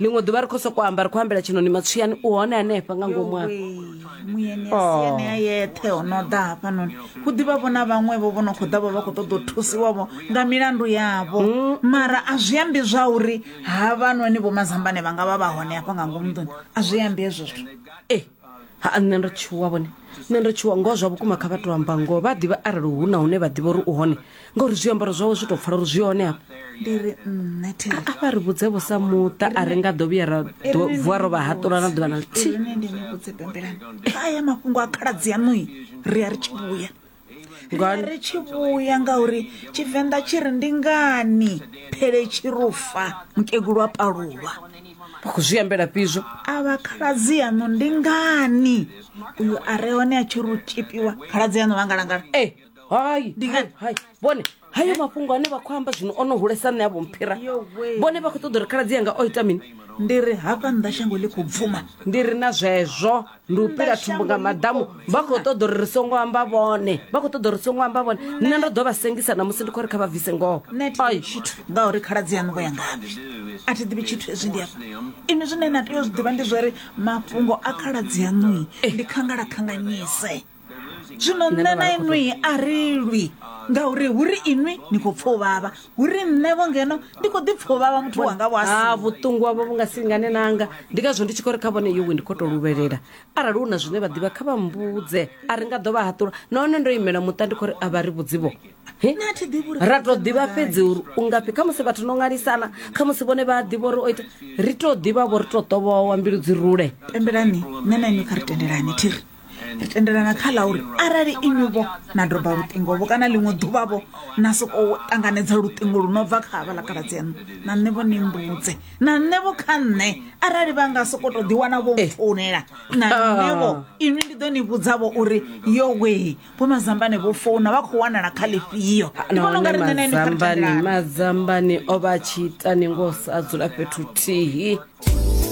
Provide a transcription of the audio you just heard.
ḽiṅwe ḓuvha ri khou sokou amba ri khou ambela tshinoni matswiyani u hone hanefha nga ngomu afho muyeni a Oh. siani a yeṱhe o no ḓa hafhanoni hu ḓivha vho na vhaṅwevho vho no khou ḓa vho vha khou ṱoḓa u thusiwavho nga milandu yavho Mm. mara a zwi ambi zwa uri havhanoni vho mazambane vha nga vha vha hone hafha nga ngomu nḓuni a zwi ambi hezwo zwithu ha nṋe ndo tshuwa vhone nṋe ndo tshuwa ngoho zwa vhukuma kha vha to amba ngoho vha ḓivha arali hu na hune vha ḓivha uri u hone ngauri zwiambaro zwawe zwi tou pfala uri zwi hone hafha ndi ri nṋe thero a vha ri vhudze vho sa muṱa a ri nga ḓo vhuya ra ḓo- vuwa ro vha haṱula na ḓuvha na ḽithihi ine ndi ni vhudze pembelani kha aya mafhungo a khaladzi yaṋui ri a ri tshi vhuya nga ri tshi vhuya ngauri tshivenḓa tshi ri ndi ngani phele tshi rufa mukegulu a palulwa vha khou zwi ambela fhizwo a vha khaladzi yaṋu ndi ngani uyu a re hone a tshi ri u tshipiwa khaladzi yaṋu vha ngalangala e hai ndi ngani hai vhone hayo mafhungo ane vha khou amba zwino o no hulesa nṋe a vho mphira vhone vha khou ṱoḓa uri khaladzi yanga o ita mini ndi ri hafha nnḓa shango ḽi khou bvuma ndi ri na zwezwo ndi u pila thumbu nga maḓamu vha khou ṱoḓa uri ri songo amba vhone vha khou ṱoḓa uri songo amba vhone nṋe ndo ḓo vha sengisa na musi ndi khou ri kha vha bvise ngoho ai tshithu ngauri khaladzi yaṋu vho ya ngavhe a thi ḓivhi tshithu hezwi ndi afha inwi zwine na tea u zwi ḓivha ndi zwori mafhungo a khaladzi yaṋui ndi khangala khanganyise zwino nṋe na inwi a ri lwi ngauri hu ri inwi ni khou pfa u vhavha hu ri nṋevho ngeno ndi khou ḓi pfa u vhavha muthu wanga vho asi ah, vhuṱungu wavho vhu nga singane nanga ndi ngazwo ndi tshi khou ri kha vhone yowe ndi khou tou luvhelela arali hu na zwine vha ḓivha kha vha mbudze a ri nga ḓo vha haṱula nahone ndo imela muṱa ndi khou ri a vha ri vhudzivho ra to ḓivha fhedzi uri u ngafhi kha musi vhathu no ṅwalisana kha musi vhone vha ḓivha uri o ita ri to ḓivha vho ri to ṱovhowa mbilu dzi rule pembelani nṋe na inwi kha ri tendelani thiri ri tendelana kha ḽa uri arali inivho na doba luṱingovho kana ḽiṅwe ḓuvhavho na sokou ṱanganedza luṱingo lu no bva kha havha ḽa kaladzi aṋu na nṋevho ni mbudze na nṋevho kha nṋe arali vha nga sokou tou ḓiwana vho eh. founela na ah. nṋevho inwi ndi ḓo ni vhudzavho uri yo wee vho mazambane vho founa vha khou wanala kha ḽifhio ah, ndi vhona ungari nṋe nainimazambane o vha tshi ita ni ngo sa dzula fhethu thihi